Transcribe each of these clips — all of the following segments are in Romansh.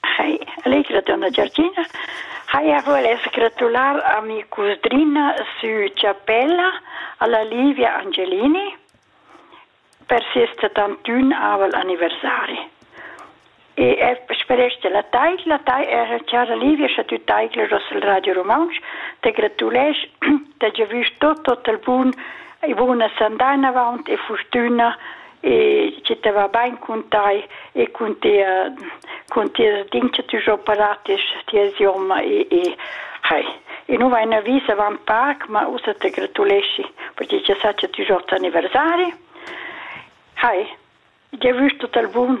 Schi, allegra donna Giorgina. Haja vuless gratular a mi cusdrina sü Chapella, alla Livia Angelini, per ses settantun aval anniversari. E er sperește la tai, la tai era cara Livia și a tu taicla Rossel Radio Romansh, te gratuleș, te gevüș tot, tot el bun, e buna sandaina vaunt e furtuna e che te va bain cun tai e cun tia cun tia din che ti jo paratisch tia idioma e e hai e nu vai na vis avant parc ma ussa te gratuleschi perché che sa che ti jo aniversari hai Io vus tot al bun.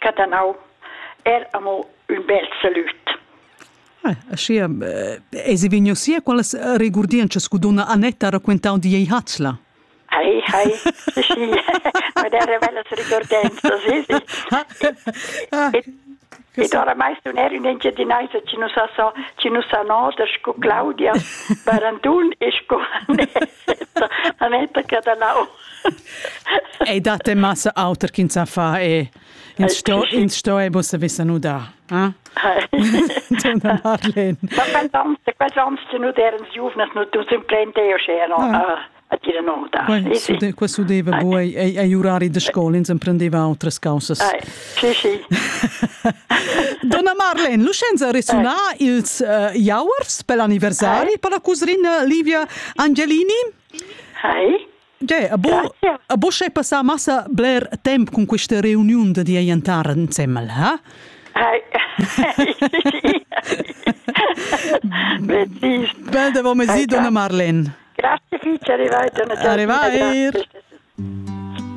Catanau. Er amo ün bel salüt. Ah, aschia eh, eisi vegniu sia qualas regurdientschas cu donna Annetta ha raquentau di ei Hatzla. Hai, hai, sì, ma der velas regurdienzas, sì, sì. Ed ora mai stun er in Engiadinaisa ci nus sa ci nus sa noder scu Claudia Barandun e scu A me perché da nau. Ei dat de massa auter ch'ins sa fa e ins sto ins sto e bussa vissa nu da. Ah? Donna Marlene. Ma quel vans nu derens juvnas nu du simplente io scena. A dire no da. Qua sudeva buoi ei urari de scola ins emprendeva outras causas. Sì, sì. Donna Marlene, l'uscenza ha resunà eh. ils uh, Jauers per l'anniversari per la cusrina Livia Angelini. Hi. Ge, a bo, a bo sche passà massa bler temp con questa reunion di aientar insemmel, ha? Hi. Precis. Bel de momesi, Donna Marlene. Grazie, ci arrivai, Donna Giorgina. Arrivai.